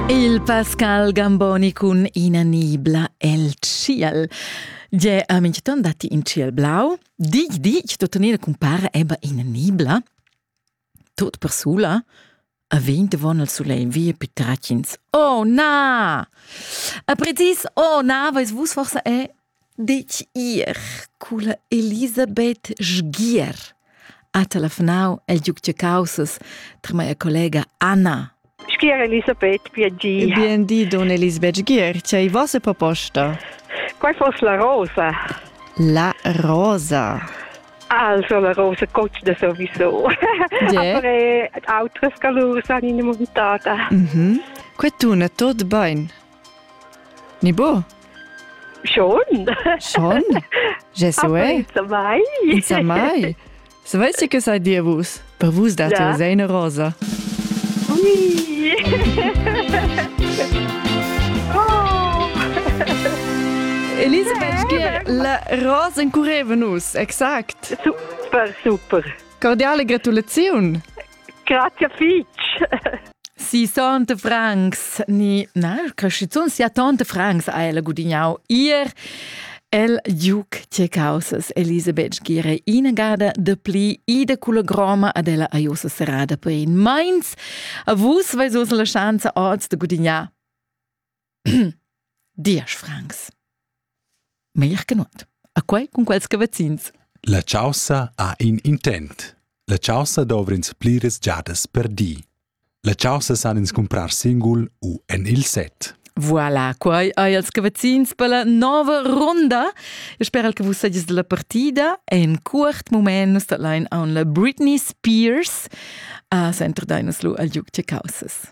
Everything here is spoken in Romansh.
Il Pascal Gamboni cun ina nibla el tschiel. Gie, a minchton datti in tschiel blau. Dig, dig, tuttenina cumpara eba ina nibla. Tot persula. A vent von il sulegl via più tracins. Oh na! A prezis, oh na, veis vus forse è Ditg ir culla Elisabeth Sgier ha telefonau el giug da caussas tra mia collega Anna. Schier Elisabeth Piagia. Bien di, donna Elisabeth Sgier, c'è ei vossa proposta? Quai fosse la rosa. La rosa. Also la rosa coccia sowieso. Yeah. Aber autres calurs han in montata. Mhm. Que tuna tot bain. Ni bo? Schon. Schon? Je so è. Samai. Samai. Savais du, che sai dir vus? Per vus date ja. sei eine rosa. Ui. oh. Elisabeth, gie, la rosa incurreva nus, exakt. Super, super. Cordiale gratulaziun. Grazie fitg. Si tante francs ni na crescizun sia tante francs ha ella gudignau ir El Duke tge causas Elisabeth gire inagada de pli ida culla groma ad ella aiosa serrada per in meins. A vus veis us la schanza oz de gudignar Diesch francs. Meglier che nuot. A quei cun quels che vecins. La caussa ha in intent. La caussa dovrins pliras giadas per di. La caussa san ins comprar singul u en il set. Voilà, quai hai els che vecins per la nova ronda. Eu spero che vus sagies della partida e in curt moment nus allein on la Britney Spears a centro dainos lu al Juc Causas.